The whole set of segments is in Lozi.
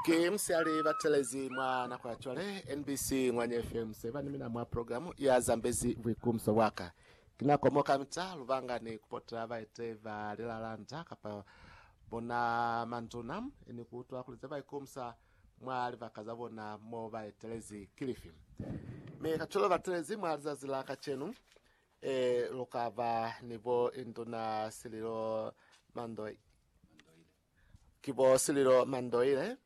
Ke musiyale batelezi mwa nako ya cwale, NBC Ngwanya FM 7 ni mina mwa programu ya Zambezi Buikumso Bwaka. Ki nako mo kamita lubanga ni kupota baite ba lilalanda kapa bona manduna ni kuutwa kuli ze baikumsa mwa libaka za bona mo ba etelezi ki lifi. Mi kacwalo batelezi mwa lizazi la kacenu, e, lukaba ni bo Induna Sililo Mandoe. Ki bo Sililo Mandoile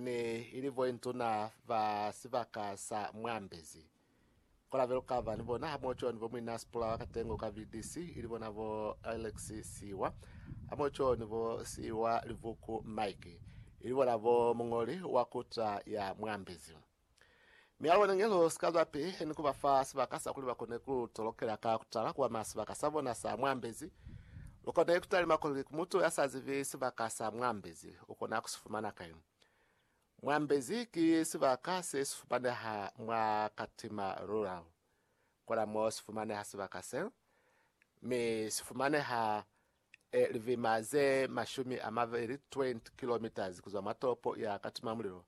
ne i li bointuna ba sibaka sa Mwambezi. Ku la be lu ka ba ni bona hamoho cwani bo Muinna Sipula wa Katengo ka BDC, ili bona bo Alex Siiwa, hamoho cwani bo Siiwa Livuku Mike, ili bona bo muñoli wa kuta ya Mwambezi. Mi alona nge lu si ka zwa pihi ni ku ba fa sibaka sa kuli ba kone ku tolokela ka ku tala kwa masibaka sa bona sa mwambezi. Lu kone ku talima kuli ku mutu ya sa zibi sibaka sa mwambezi u kona ku si fumana kai. Mwambezi ki sibaka se si fumaneha mwa katima rural. Kona mo si fumaneha sibaka se, mi si fumaneha e livima ze mashumi a mabeli 20 kilometres kuzwa mwa tolopo ya Katimamulilo,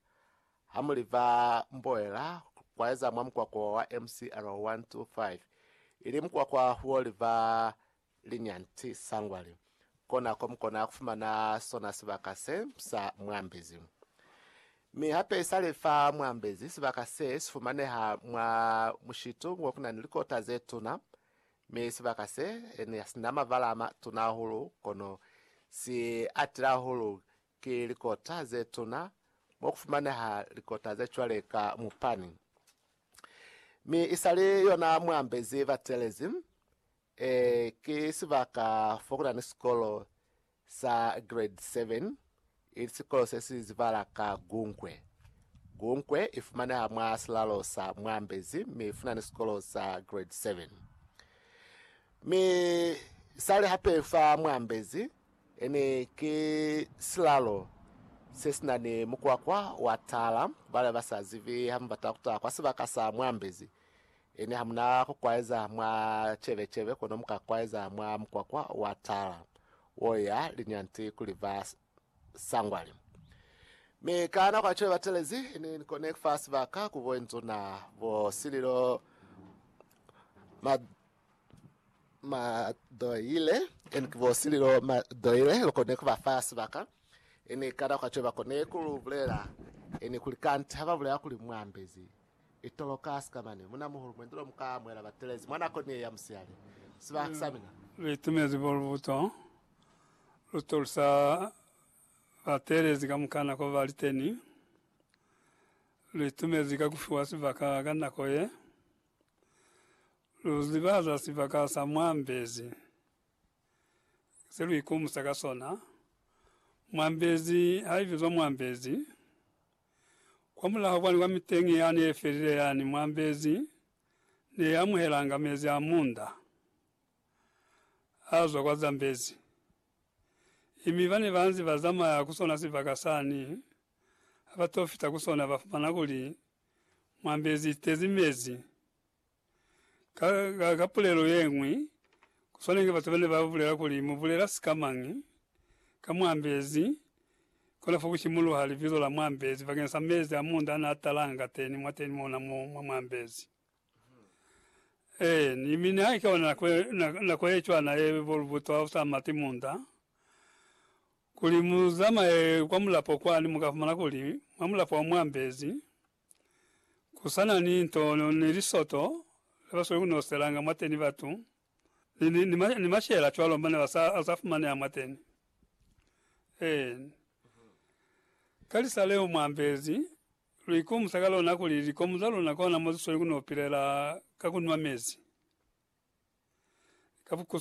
ha mu liva Mboela kwaeza mwa mukwakwa wa MCR 125, ili mukwakwa huo liva Linyanti Sangwali, kona ko mukona kufumana sona sibaka se sa Mwambezi. Mi hape isale fa Mwambezi, sibaka se sifumaneha mwa mushitu wo kunani likota zetuna, Mi sibaka se ne si na mabala a matuna hahulu, kono si atile hahulu ki likota ze tuna, mo ku fumaneha likota ze cwale ka mupani. Mi isali yona muambezi batelezi, ee, ki sibaka fo ku na ni sikolo sa Grade 7, ili sikolo se si zibala ka Gunkwe. Gunkwe i fumaneha mwa silalo sa Mwambezi mi i funani sikolo sa Grade 7. Mi sali hape fa Mwambezi ini ki silalo se si na ni mukwakwa wa tala. Bale ba sa zibi ha mu bata ku ta kwa sibaka sa Mwambezi, Ene hamuna ku kwaeza mwa cebecebe kono muka kwaeza mwa mukwakwa wa tala wo ya linyanti kuli ba sangwale. Mi ka nako ya cwale ba telezi, Ni kone fa sibaka ku bo nzuna, bo sililo, ma, ma doile, eni ki bo sililo, ma doile, lu kone ku ba fa sibaka, eni ka nako ya cwale ba kone ku lu bulela, eni kuli kanti ha ba bulela kuli mwa ambezi. Itolo ka sikamani, Munamuhulu, mwendi lo mu ka amuhela batelezi mwa nako ni ye ya musihali. Sibaha sa mina. Lu itumezi bo lubuto lu tolusa batelezi kamuka nako ba li teni. Lu itumezi ka ku fiwa sibaka ka nako ye. Lu ziba za sibaka sa mwa mbezi, se lu ikumusa ka sona. Mwa mbezi ha i bizwa mwa mbezi. Kwa mulaho kwani kwa miteñi yani ye felile yani, muambezi ne ya amuhelanga mezi a munda a zwa kwa Zambezi, imi bane banzi ba zamaya ku sona sibaka sani ha ba to fita ku sona ba fumana kuli muambezi itezi mezi. Ka, ka pulelo yeñwi, ku swana inge batu bane ba bulela kuli, Mu bulela sika mañi? Ka muambezi, kona fo ku simuluha libizo la muambezi bakeng sa mezi a muunda ana a talanga kateni mwateni mona mo mwa muambezi. Ee, ni, mi nihaike ona nako, nako ye cwana ye bo lubuto ha u sa mati muunda, kuli mu zamaye kwa mulapo kwani, mu ka fumana kuli, mwa mulapo wa muambezi, Ku sa na ni nto ni lisoto le ba sweli ku noselanga mwateni batu, ni, ni, ni, ni mashela cwalo mane ba sa, a sa fumaneha mwateni. Eeni. Ka lisa leo mwa ambezi, lu ikomusa ka lona kuli likomu za luna kona mo zi sweli ku no pilela ka ku nwa mezi ka bukusu.